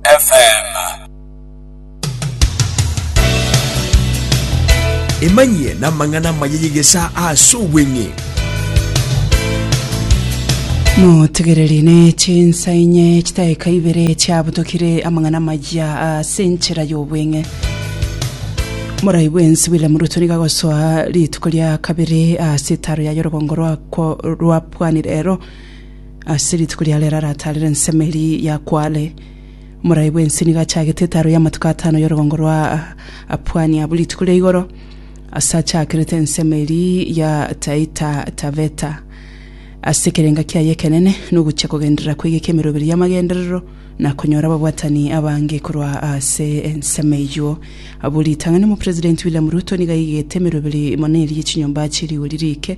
FM. Emanyie n'amang'ana amaya y'egesaa ase obweng'e. Motegereri ne chinsa inye chitaeka ibere chiabutokire amang'ana maya ase enchera y'obweng'e. Morai bwensi William Ruto niga gosoa rituko ria kabere ase etaro ya yorogongo rwakwo rwa pwani rero Ase rituko ria rero arataarere ensemo eria ya Kwale, Morai bw'ense nigo achagete etaaro y'amatuko atano y'orogongo rwa Apuani abwo rituko ria igoro, ase achakerete ensemo eria ya Taita Taveta. Ase ekerenga kiaye ekenene nogochia kogenderera kwegeka emeroberi y'amagenderero, na konyora ababwatani abange korwa ase ensemo eyio. Abwo ritang'ani Omopresidenti William Ruto nigo aigete emeroberi mono eria ye chinyomba chie rigori rike,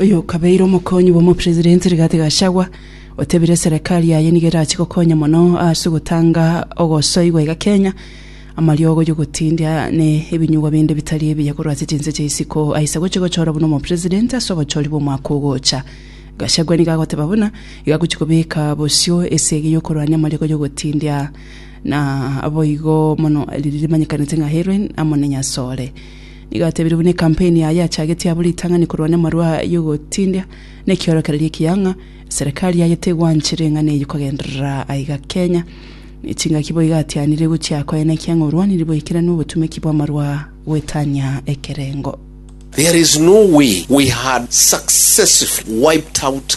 Oyokabeire omokonyi bw'omopresidenti Rigathi Gachagua, otebire serekari yaye nigo erache gokonya mono ase ogotanga ogosoigwa iga Kenya, amariogo y'ogotindia ne ebinyugwa binde bitari ebiya korwa ase chinse chia isiko aise gochia gochora buna omopresidenti ase obochori bw'omwaka ogocha. Gachagua nigo agoteba buna igo agochia kobeka bosio esegi y'okorwania amariogo y'ogotindia na boigo mono rimanyekanete ng'a heroin amo ne nyasore. Nigo atebirie buna ekampeni yaye yachagetie abwo ritang'ani korwa nemarwa yogotindia na ekiorokererio ekiya ng'a serikali yaye tegwanchi ring'ana eyio kogenderera aiga Kenya ne chingaki boigo atianire gochia koenekia ng'a orwanirie boikeranu obotumeki bw'amarwa goetania ekerengo. There is no way we had successively wiped out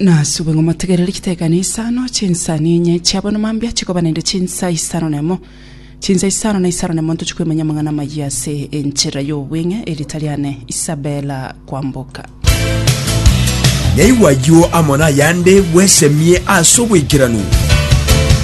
Nasubwe ng'a motegerere chitekano isano chinsani enye chiabonwa mambia chikoba naende chinsa isano na emo. Chinsa isano na isano na emo ntochie koimanya amang'ana amayia ase enchera y'obweng'e, erita riane Isabella Kwamboka. Naigwa ayio amo nayande bwesemie ase obwaikeranu.